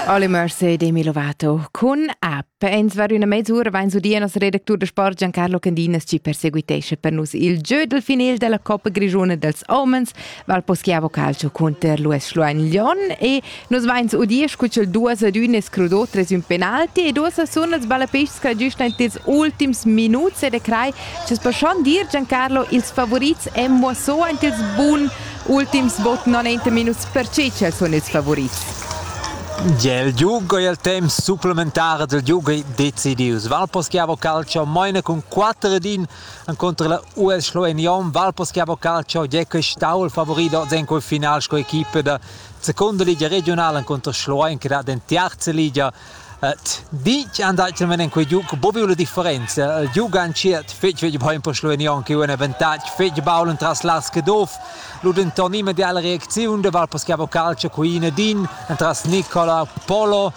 Alle Mercé de Milovato con app. Ins var üna mezz'ura vain su dir nos redactur da sport Giancarlo Candinas ci perseguitesce per nus il jeu del final della Coppa Grigione dels Omens, val poschiavo calcio conter l'US Schluein-Lyon e nos vain su udir scucel duas ad üne scrudò tres ün penalti e duas sun els ballapeists che giusta in tes ultims minuts ed e crai, ce spascion dir Giancarlo ils favorits emmo so int ils bun Ultims bod 90 minus per Cicel sun ils favurits. Gel giugo il temp supplementar del giugi decidius. Valposchiavo Calcio maina cun 4 ed 1 contro la US Schloenion. Valposchiavo Calcio Gecko stau il favorito in quel final sco equipe da seconda liga regionale contro Schloen che da den terza liga Ditg andaitan en quei giug buca la differenza. Il giug entschiet fetg fetg bein per Slovenion che un avantatg fetg baul entras Lars Caduff. Lu denton immediala reacziun da Val Paschiavo Calcio Cuina din entras Nicola Polo.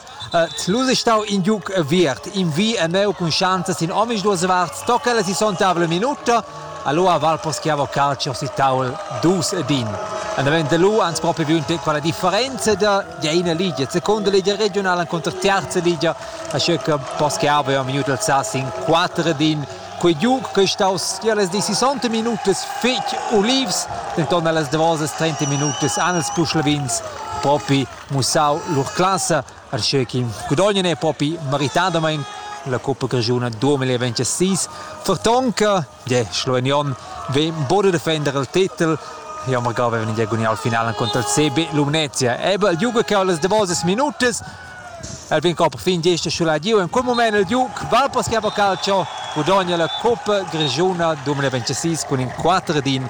Lu sei stau in giug aviert. In vi e meu cun schanzas in omisduas varts tocca la sisonta minuta Allora Val poschiavo calcio si tavol dus e bin. Andavent de lu ans proprio viunte quella differenza da de ina ligia. Secondo ligia regionale incontro terza ligia, a circa poschiavo io minuto alzassi in quattro din Quei giug che staus tier les 60 minutas fetg ulivs, denton allas davosas 30 minutas han els puschlavins propi mussau lur classa Arschö chi gudognan e propi meritadamaing la cuppa grischuna 2026. Fertonca de Slovenion vegn bod a defender il titel Ja magari avevan in diagonal finale contro il CB Lumnezia. Eben, juca cau las davosas minutas. El vegn cau per fin gesta sulla giu. In quel moment il Duke va per schiavar calcio, gudogna la cuppa grischuna 2026 cun in 4 din